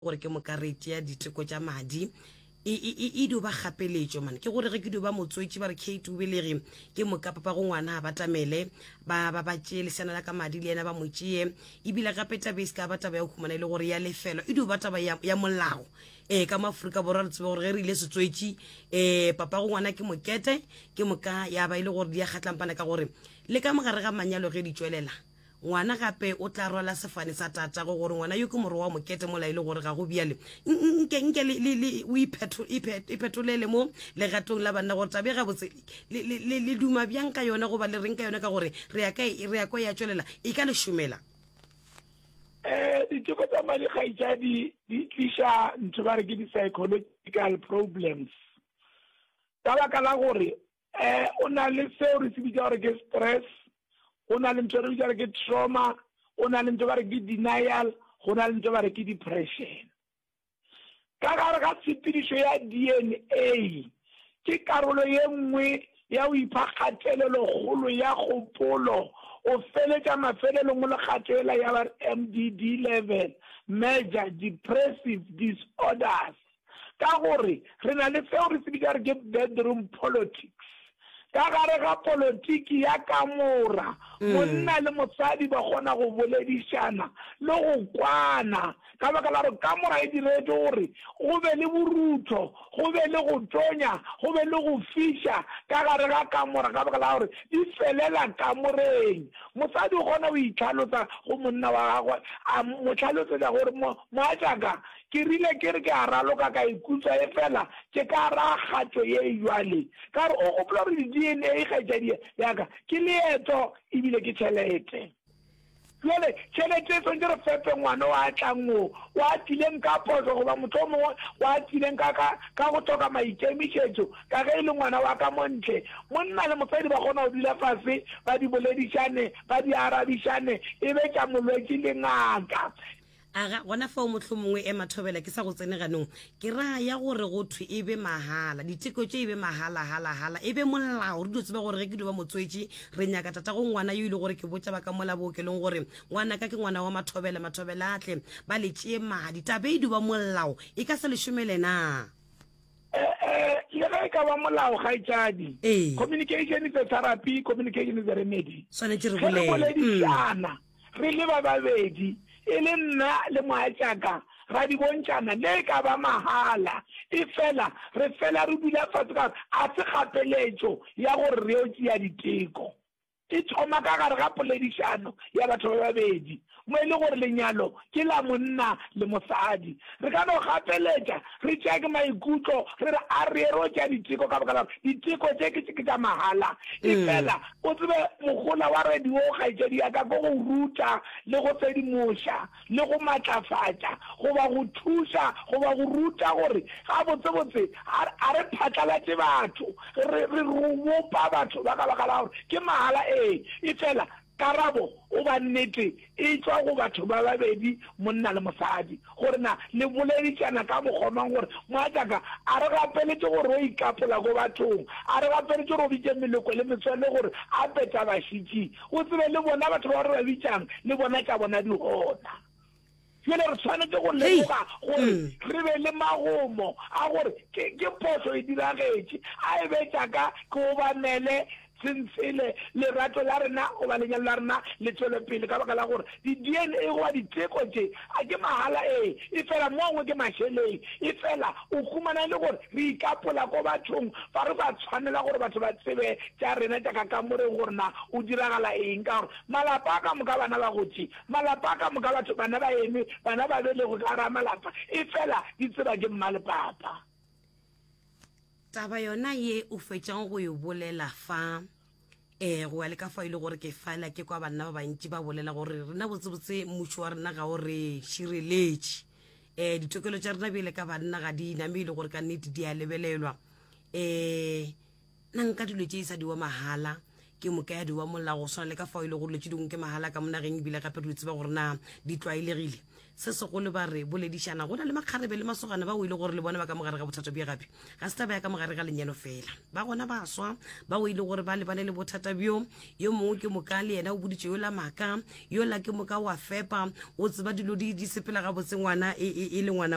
gore ke moka re tšea diteko tša madi e, e, e, e dio ba kgapeletšo mane ke gore ge ke dio ba motswetši ba re kate o belege ke moka papa go ngwana a batamele ba ba ba tšee lesana la ka madi le yena ba mo tšee ebile gape taba e se ka ba taba ya go humana e le gore ya lefelo e dio ba taba ya, ya molao um ka maaforika borwa re tsebe gore ge re ile setswetši um papa go ngwana ke mokete ke moka ya ba e le gore di ya kgatlampana ka gore le ka mogare ga manyalo ge di tšwelela Ngwana gape o tla rwala sefane sa tatago gore ngwana yo ke morwa wa mokete mola e le gore ga go bjale. Nke, nke le, le, le, o iphetho, iphet, iphetolele mo legatong la banna gore tabe gabotse le, le, le, le duma bjang ka yona goba le reng ka yona ka gore re ya ka, re ya kwa ya tšwelela e ka le šomela. Eh, diteko tsa madi kgaitšadi di tliša ntho ba re ke di-psychological problems ka baka la gore eh o na le seo re se bitsa gore ke stress go na le ntho re bitsa gore ke trauma go na le ntho ba re ke denial go na le ntho ba re ke depression ka gare ga tshepedišo ya d n a ke karolo ye nngwe ya go ipha kgatelelo kgolo ya kgopolo o feletša mafelelong o le kgatelela ya ba mdd level major depressive disorders Ka gore re na le seo re se bitša re ke bedroom politics. Ka gare ga politiki ya kamora, monna le mosadi ba kgona go boledišana le go kwana ka baka la gore kamora e diretšwe gore go be le borutho, go be le go tonya, go be le go fiša ka gare ga kamora ka baka la gore di felela kamoreng. Mosadi o kgona go itlhalosa go monna wa gagwe a mo hlalosetša gore, Mogatšaka, Ke rile ke re ke a raloka ka ikutwa efela ke ka ra kgatšo ye jwale. Ka re, O gopola gore di-DNA, kgaetšadi ya ka, ke leeto ebile ke tšhelete. Bjale, tšhelete e swanetše re fepe ngwana o a tlang wo, o atileng ka phošo goba mohlomongwe o atileng ka, ka, ka go hloka maikemišetšo, ka ge e le ngwana wa ka mo ntle. Monna le mosadi ba kgona go dula fase, ba di boledišane, ba di arabišane, e be tša molwetši le ngaka. Aga, gona fao mohlomongwe ema thobela ke sa go tsene ganong. Ke ra ya gore go thwe e be mahala, diteko tše e be mahala, hala, hala, e be molao. Re dio tseba gore ge ke dio ba motswetši, re nyaka tatago ngwana yo ile gore ke botša ba ka mola bookelong gore ngwanaka ke ngwana wa Mathobela, Mathobela a tle ba le tšee madi. Taba e e dio ba molao, e ka se le šomele naa? E-e, le ge e ka ba molao, kgaetšadi. Ee. Communication is a therapy, communication is a remedy. Swanetše re Ge re bolele. boledišana, Mm. Re le ba babedi, e le nna le mogatšaka, ra di bontšana, le e ka ba mahala, efela re fela re dula fase ka gore ga se kgapeletšo ya gore re yo tšea diteko. E thoma ka gare ga poledišano ya batho ba babedi, mo e le gore lenyalo ke la monna le mosadi. Re ka no gapeletša re tšea ke maikutlo re re a re ero tšea diteko ka baka la gore diteko tše ke tša mahala. Efela o tsebe mogola wa radio wo kgaetšedi ya ka ke go ruta le go sedimoša le go matlafatša goba go thuša goba go ruta gore gabotsebotse a re phatlalatše batho re re bopa batho ba ka baka la gore ke mahala ee efela Karabo goba nnete e tšwa go batho ba babedi, monna le mosadi. Gore na le boleditšana ka mokgwa mang gore, Mogatšaka a re gapeletše gore o ikapola ko bathong, a re gapeletše gore o bitše meloko le metswalle gore a petabašitši, o tsebe le bona batho ba re ba bitšang le bona tša bona di gona. Bjale re swanetše go lemoga gore mm. re be le magomo a gore ke, ke phošo e diragetše, a e betša ka ke obamele sentshele lerato la rena goba lenyalo la rena le tšwele pele ka baka la gore di-dna goba diteko tše a ke mahala ee e fela mongwe ke mašeleng e fela o humana e le gore re ikapola ko bathong fa re sa tshwanela gore batho ba tsebe tša rena tša kakamoreng gore na o diragala eng ka gore malapa a ka moka bana ba gotše Malapa ka moka, batho bana ba eme, bana ba belegwe ka gare a malapa, efela di tseba ke mma le papa. Taba yona ye o fetšang go e bolela fa, eh, go ya le ka fa e le gore ke fala ke kwa banna ba bantši ba bolela gore rena botsebotse mmušo wa rena ga o re šireletše. Eh, ditokelo tša rena bjele ka banna ga di name e le gore ka nnete di a lebelelwa. Eh, Na nka dilo tše e sa diwa mahala ke moka ya diwa mola go swana le ka fao e le go dilo tše dingwe ke mahala ka monageng ebile gape re di tseba gore na di tlwaelegile se segolo ba re boledišana go na le makgarebe le masogana ba o e le gore le bona ba ka mogare ga bothata bjo gape ga se taba ya ka mogare ga lenyalo fela ba gona ba swa ba o e le gore ba lebane le bothata bjo yo mongwe ke moka le yena o boditše yo la maka yo la ke moka wa fepa o tseba dilo di sepela gabotse ngwana e, e, e le ngwana